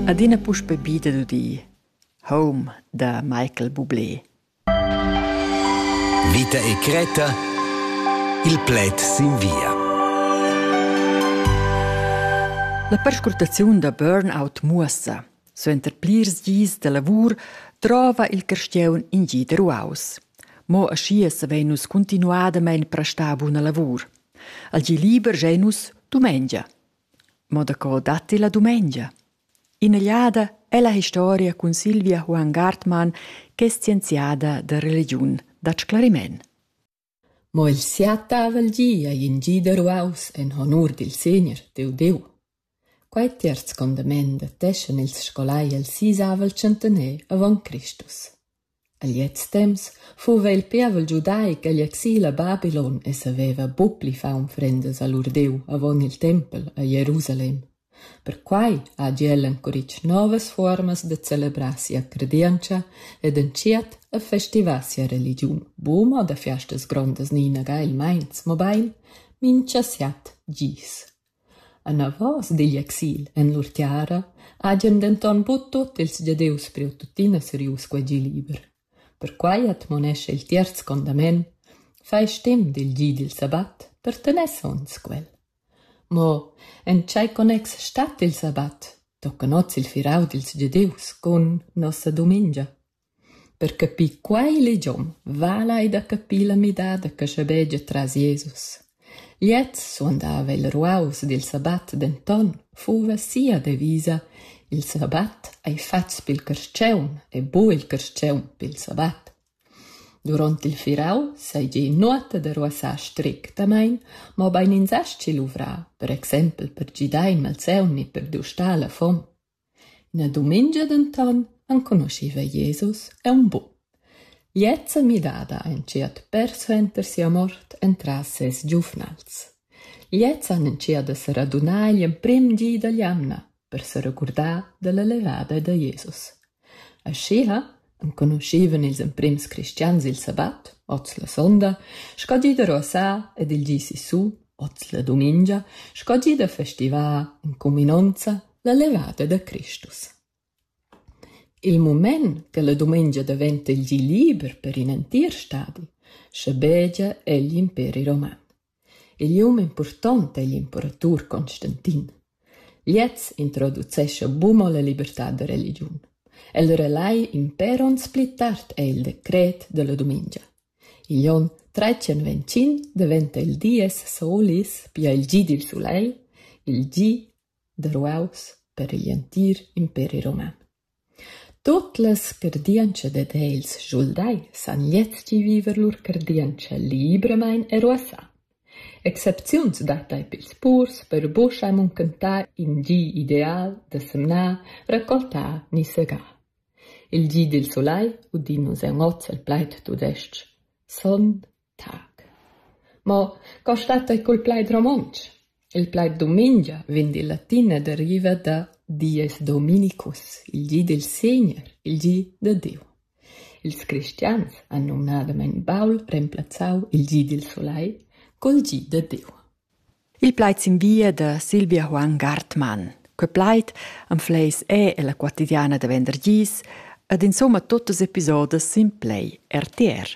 Adina puspè bi dad udir Home da Michael Bublé. Vita e Creta Il pled sin via. La perscrutaziun da burnout muossa, suenter plirs dis da lavur, trova il carstiaun in gi da ruaus. Mo aschia savein nus continuadamein prestar buna lavur. Al gi liber gein nus dumengia. Mo daco datti la dumengia? In'egliada ella historia cun Silvia Huon Gartmann ch'è scienziada da religiun dat sclariment. Mo il siatavel gi ei in gi da ruaus en honur dil Segner, Deu Deu. Quei terz condament dateschan ils scolai el sisavel centener avon Cristus. A gliez temps fuva il pievel giudaic agl exil a Babylon e saveva buc pli far unfrendas a lur Diu avon il tempel a Jerusalem. Perquei hagi el encuritg novas fuormas da celebrar sia credientscha ed entschiet a festivar sia religiun, buca mo da fiastas grondas ni inaga il meins, mobein mintga siat gis. Anavos digl exil en lur tiara hagien denton buc tut ils Gieus priu tuttina serius quegi liber. Perquei admonescha il tierz condament: Fai stim dil gi dil sabbat per tener sogns quel. Mo en tschei connex stat il sabbat? Toccan oz il firau dils Gieus cun nossa dumengia. Per capir quei legiom vala ei da capir la midada che schabegia tras Jesus. Gliez suandava il ruaus dil sabbat, denton fuva sia devisa: Il sabbat ei fatgs pil carstgaun e buca il carstgaun pil sabbat. Duront il firau seigi nuota da ruassar strictamein, mobein ins astgi luvrar, per exempel per gidar in malsaun ni per dustar la fom. Ina dumengia denton enconuschiva Jesus aunc buc. Gliezza midada ein tschert persuenter sia mort entras ses giuvnals. Gliezza han entschiet da seradunar igl emprem di dall'jamna per seregurdar dalla levada da Jesus. Aschia enconuschevan ils emprims cristians il sabat, oz la sonda, sco gi da ruossar ed il gi sissu, oz la dumengia, sco gi da festivar, in cuminonza, la levada da Cristus. Il mument che la dumengia daventa il gi liber per in entir stadi, schabegia egl imperi roman. Igl um impurtont ei l'imperatur Constantin. Gliez introducescha buca la libertad da religiun. El relai impèr onns pli tard ei il decret dalla dumengia. Igl onn tretschenventschin daventa il dies Solis, pia il gi dil sulegl, il gi da ruaus per igl entir imperi roman. Tuot las cardientscha dad els schuldai s'han lezchi viver lur cardientscha libramaing e ruossà. Excepziuns dattai pils purs per buca munchentar in gi ideal da semnar, raccoltar ni segar. Il gi dil sulai, udind nus aunc oz il plaid tudestg: Sonn. Tag. Mo co stat ei cul plaid romontsch? Il plaid dumengia vegn dil latin e deriva da Dieus dominicus, il gi dil Segner, il gi da Diu. Ils cristians han numnadamein baul remplazzau il gi dil sulai cul gi da Diu. Il plaid s'invia da Silvia Juan Gartmann. Quei plaid anfleis è ella quotidiana da vendergis ed insomma tuttas episodas sin Play RTR.